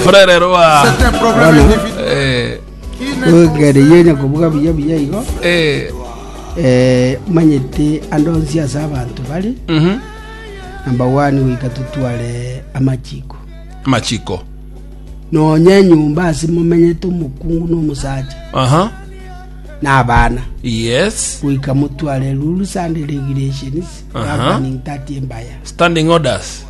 Frere Rua. Eh, ogereyo nyakobuga buya buya igo eh, eh, manyete ande onsi ase abanto bari mhm. namba wani goika totware amachiko Machiko. nonya enyomba ase momenyete omokungu na omosacha Aha. na abana Yes. goika motware ruru sande regulations Aha. governing that embaya Standing orders.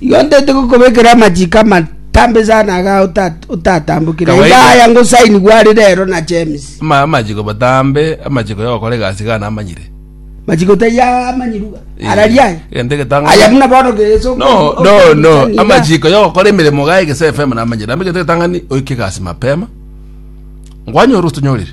Igo ntaete gokobekera amachiko amatambe sana aga ota- otatambokire. Iga Kawaida. aya ngosainigwe are rero na James. Ama- amachiko matambe amachiko ya gokora egasi iga namanyire Machiko taiyo amanyiruga. Eh, Araria aya. egento egetang'ani. Aya buna bono geso. no no no amachiko ya gokora emeremo iga egese fm namanyire amo egento egetang'ani oike egasi mapema ngwanyore otonyorire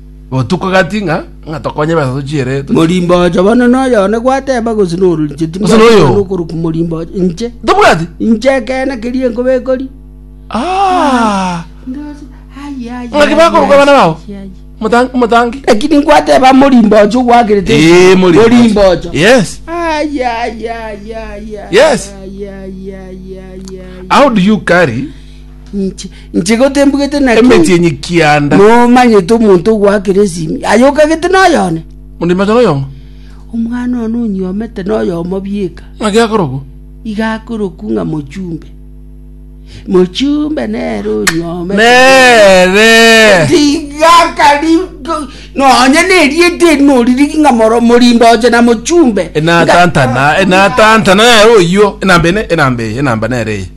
Botuko gati ng'a ng'a tokonye besa tochiere tochi- Morimbooche bono noyo one gwateba gose noru inche Gose noyo. timbwateba nokorokwa morimbooche inche Tobwati? inche ekeene keria nkobekori Ah! Ndose, aye, aye, Ng'a ki aye, bakoroka aye, abana bao? aye, aye. Motang- motangi lakini gwateba morimbooche ogwakerete Eh, mori- morimbooche yes Aye, aye, aye, aye, aye, Yes. aye, aye, aye, aye, aye. how do you carry Inche, inche gotembugete naki? Emeti enye kianda. Nomanyete omonto ogwakera esimi, aye okagete noyone? Onde machara oyomo. Omwana one onyuomete noyomo bieka. Naki akorokwa. Iga akorokwa ng'a mochumbe. Mochumbe nere onyuomete. Nere. Tiga kari nonye nerieta eri noririgi ng'a moro morimba oche na mochumbe. Enatantana, enatantana nere oyio, enamba ene, enamba eye, enamba nere eye.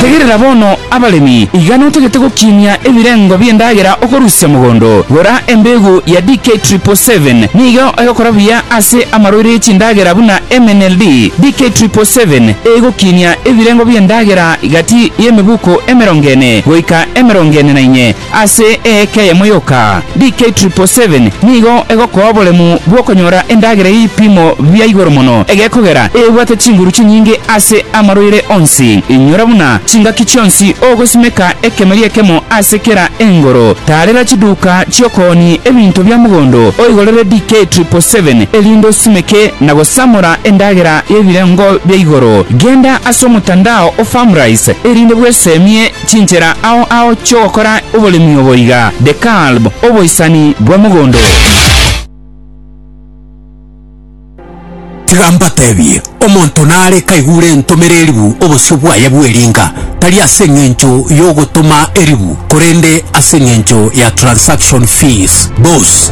Tegerera bono, abaremi, iga notagete gokinia ebirengo bi'endagera okorusia mogondo. Gora embegu ya DK triple seven, nigo egokora buya ase amaroiro ye chindagera buna MNLD. DK triple seven egokinia ebirengo bi'endagera gati y'emebuko emerongo ene goika emerongo ene na inye. Ase eeka eyemo yoka, DK777 nigo egokoa oboremu bw'okonyora endagera y'ebipimo bia igoro mono egekogera ebwate chinguru chinyinge ase amarwaire onsi. Inyora buna chingaki chionsi ogosimeka ekemeri ekemo ase kera engoro. Taarera chiduka chi'okooni ebinto bia mogondo oigorere DK777 erinde osimeke na gosamora endagera y'ebirengo bia igoro. Genda ase omotandao o Farmrise erinde bweseemie Chinchera ao ao chi'ogokora oboremi obo iga, The Kalb, Oboisani bwa Mogondo. Tiga mbatebie, omonto nare kaigure entomera eribu obosio bwaye bw'eringa, tari ase eng'encho y'ogotoma eribu, korende ase eng'encho ya transaction fees, bos.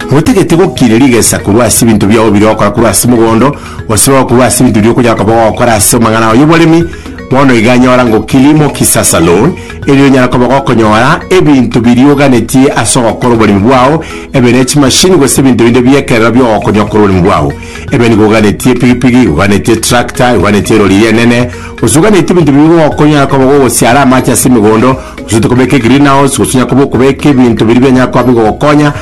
Motagete gokiria rigesa korwa ase ebinto biao biria ogokora korwa ase mogondo, gose korwa ase ebinto biria okonyara koba ogokora ase amang'ana y'oboremi, bono iga nyora ngokiri mokisasa, loan, erinde onyare koba ogokonyora ebinto biria oganetie ase ogokora oboremi bwao, ebe ne chimashini gose ebinto binde bi'ekerero bigogokonywa okore oboremi bwao. Ebe nigo oganetie epigipigi, oganetie etractor, oganetie erori eria enene, gose oganetie ebinto biria bigogokonya onyare koba gogosiara amache ase emegondo, gose ote kobeka egreenhouse, gose onyare koba okobeka ebinto biria bianyare koba bigogokonya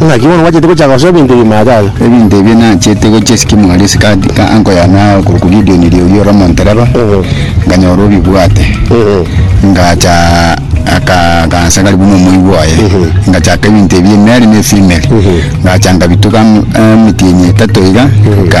Naki bono mwachete gochaka gosoa ebinto ebio maataga. Ebinto ebio nachete gochia esike mwari ase egati ka anko yane ao korokwa Gideoni Riogi ore omontereba, nkanyora obibwate, ngacha aka akansa ngari buna omoigwa oye, ngachaka ebinto ebio emeri na efimeri, ngacha ngabituga emetienyi etato iga, nka.